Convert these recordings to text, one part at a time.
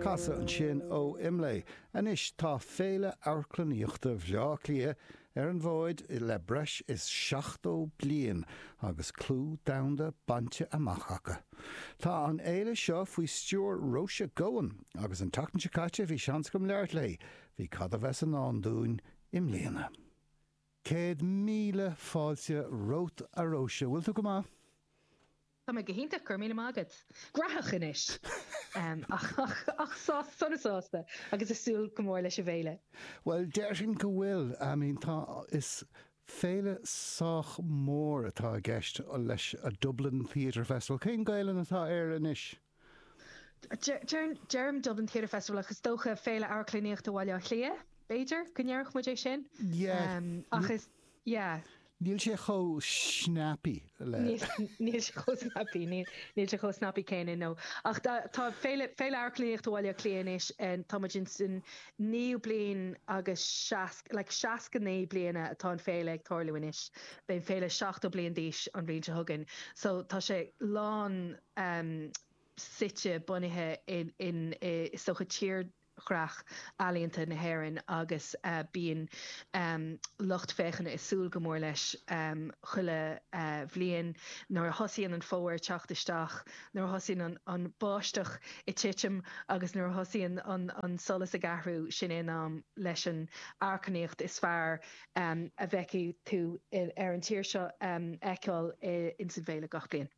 Casadh ansin ó Imlé. Anois tá Féile Amharclannaíochta Bhleá Cliath ar an bhfód le breis is 70 bliain agus clú domhanda bainte amach acu. Tá an fhéile seo faoi stiúir Róise Goan agus an tseachtain seo caite bhí seans agam labhairt léi faoi cad a bheas i ndán dúinn i mbliana. Céad míle fáilte romhat a Róise, bhfuil tú go maith? Tá mé go hiontach, go raibh míle maith agat. Gnóthach anois! Ach sásta, sona sásta agus ag súil go mór leis an bhféile. Bhuel, déarfainn go bhfuil. I mean, tá, is féile sách mór atá i gceist leis, a Dublin Theatre Festival. Cén Ghaelainn atá air anois? Deirim Dublin Theatre Festival ach is dócha Féile Amharclannaíochta Bhaile Átha Cliath, b'fhéidir, go ndéarfadh muid é sin. Ach is, yeah. Níl sé chomh snappy le. Níl sé chomh snappy, níl sé chomh snappy céanna, no. Ach tá Féile Amharclannaíochta Bhaile Átha Cliath anois, tá muid ins an naoú bliain agus seasc, like 69 bliana atá an féile ag tarlú anois. Beidh an féile 70 bliain d'aois an bhliain seo chugainn. So tá sé lán em suite, bunaithe in i sochaí tírdhreach ealaíonta na hÉireann agus bíonn lucht féachana ag súil go mór leis chuile bhliain. Nuair a thosaíonn an Fómhar ag teacht isteach, nuair a thosaíonn an bháisteach ag titim agus nuair a thosaíonn an solas ag athrú, sin é an am leis an amharclannaíocht is fearr a bhfeicfidh tú ar an tír seo a fheiceáil ins an bhféile gach bliain.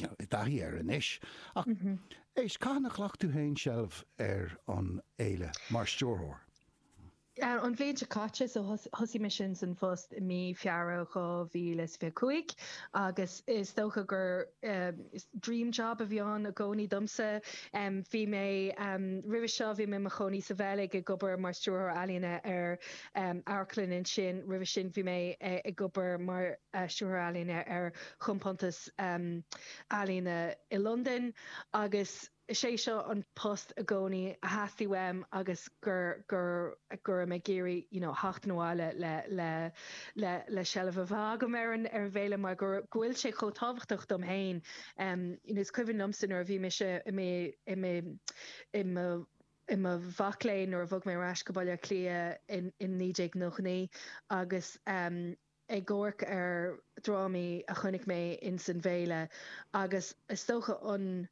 Muid i dtaithí air anois ach éist, cathain a ghlac tú féin seilbh ar an fhéile mar stiúrthóir? An bhliain seo caite, so thosaigh mé ins san phost i mí Feabhra 2025 agus is dócha gur dream job a bhí ann i gcónaí domsa. Bhí mé, roimhe seo bhí mé i mo chónaí sa Bheilg ag obair mar stiúrthóir ealaíne ar amharclann ansin. Roimhe sin bhí mé ag obair mar stiúrthóir ealaíne ar chompántas Ealaíne i Londain agus is é seo an post i gcónaí a theastaigh uaim agus go raibh mé ag iarraidh you know theacht abhaile le seilbh a bheith agam ar an bhféile mar go bhfuil sé chomh tábhachtach dom féin. Is cuimhin liomsa nuair a bhí mise i mo mhac léinn nuair a bhog mé ar ais go Baile Átha Cliath in 1999 agus ag amharc ar dhrámaí a chonaic mé ins an bhféile agus is dócha an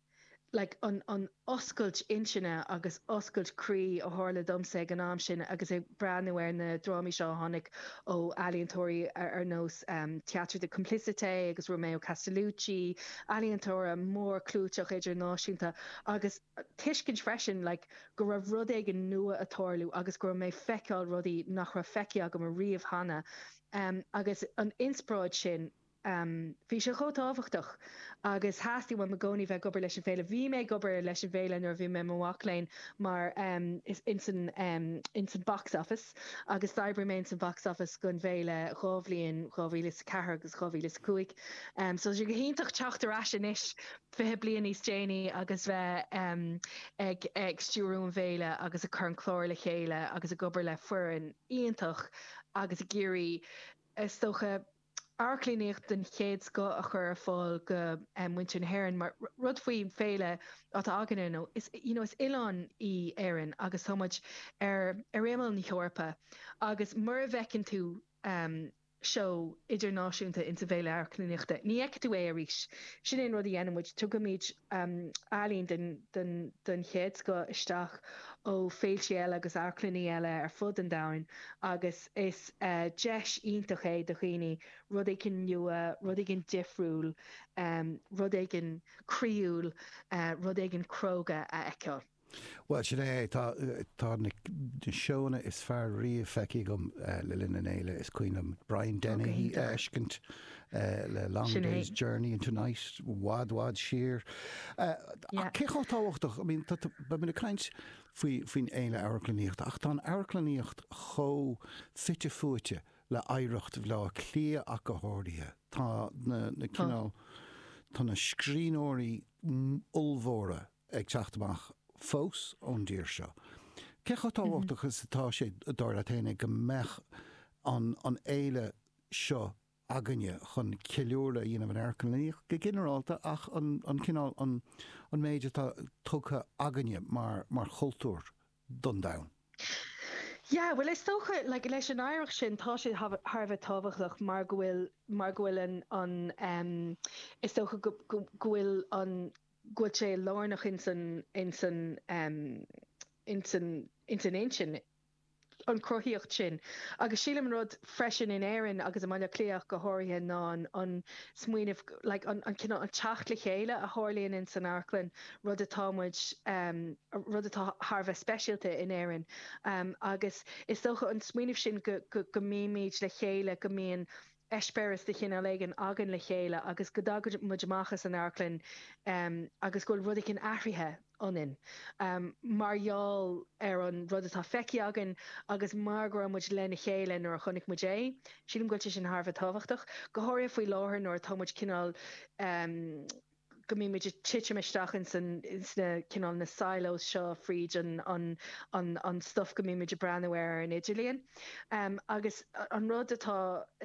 like an an oscailt intinne agus oscailt croí a tharla domsa ag an am sin agus ag breathnú ar na drámaí seo a tháinig ó ealaíontóirí ar nós Théâtre de Complicité agus Romeo Castellucci, ealaíontóirí mórchlúiteacha idirnáisiúnta agus. tuiscint freisin like go raibh rud éigin nua ag tarlú agus go raibh mé feiceáil rudaí nach raibh feicthe agam a riamh cheana ehm agus an inspioráid sin ehm bhí sé chomh tábhachtach agus theastaigh uaim i gcónaí bheith ag obair leis an bhféile. Bhí mé ag obair leis an bhféile nuair a bhí mé i mo mhac léinn mar ehm is ins an ehm ins an box office agus d'oibrigh mé ins an box office gon bhféile dhá bhliain 2004 agus 2005 ehm so tá sé go hiontach teacht ar ais anois 20 bliain níos déanaí agus bheith ag ag stiúradh an fhéile agus ag cur an cláir le chéile agus ag obair le foireann iontach agus ag iarraidh, is dócha, amharclannaíocht den chéad scoth a chur ar fáil go muintir na hÉireann mar rud faoin bhféile atá againne nó is you know is oileán í Éirinn agus tá muid ar ar imeall na hEorpa agus mura bhfeiceann tú seó idirnáisiúnta ins an bhFéile Amharclannaíochta, ní fheicfidh tú é arís. Sin é an rud a dhéanann muid, tugaimid ealaín den chéad scoth isteach ó féiltí eile agus amharclanna eile ar fud an domhain agus is deis iontach é do dhaoine rud éigin nua, rud éigin difriúil, rud éigin croíúil, rud éigin cróga a fheiceáil. Bhuel, sin é. Tá, tá na seóanna is fearr riamh feicthe agam le linn an fhéile. Is cuimhin liom Brian Dennehy a fheiscint le Long Day's Journey into Night, i bhfad bhfad siar. Cé chomh tábhachtach, I mean, beidh muid ag caint faoin fhéile amharclannaíochta ach tá an amharclannaíocht chomh fite fuaite le hoidhreacht Bhaile Átha Cliath ach go háirithe. Tá na cineál, tá na scríbhneoirí ollmhóra ag teacht amach fós ón dtír seo. Cé chomh tábhachtach is atá sé, dar leat fhéin, go mbeadh an fhéile seo againne chun ceiliúradh a dhéanamh ar amharclannaíocht go ginearálta ach an cineál, an méid atá tugtha againne mar chultúr don domhan? Yeah, bhuel is dócha, like, leis an oidhreacht sin tá sé thar a bheith tábhachtach mar go bhfuil, mar go bhfuil an, is dócha go bhfuil an, bhfuil sé lárnach ins an intinn, an chruthaíocht sin. Agus sílim an rud freisin in Éirinn agus i mBaile Átha Cliath ach go háirithe ná an smaoineamh, like an cineál, an teacht le chéile a tharlaíonn ins an amharclann, rud atá muid, rud atá thar a bheith speisialta in Éirinn. Agus is dócha an smaoineamh sin go mbímid le chéile, go mbíonn eispéireas de chineál éigin againn le chéile agus go dtagann muid amach as an amharclann agus go bhfuil rud éigin athraithe ionainn mar gheall ar an rud atá feicthe againn agus mar go raibh muid lena chéile nuair a chonaic muid é. Sílim go bhfuil sé sin thar a bheith tábhachtach, go háirithe faoi láthair nuair atá muid cineál, go mbímid ag titim isteach in sna cineál na silos seo fríd an stuif go mbímid ag breathnú air ar an idirlíon agus an rud atá,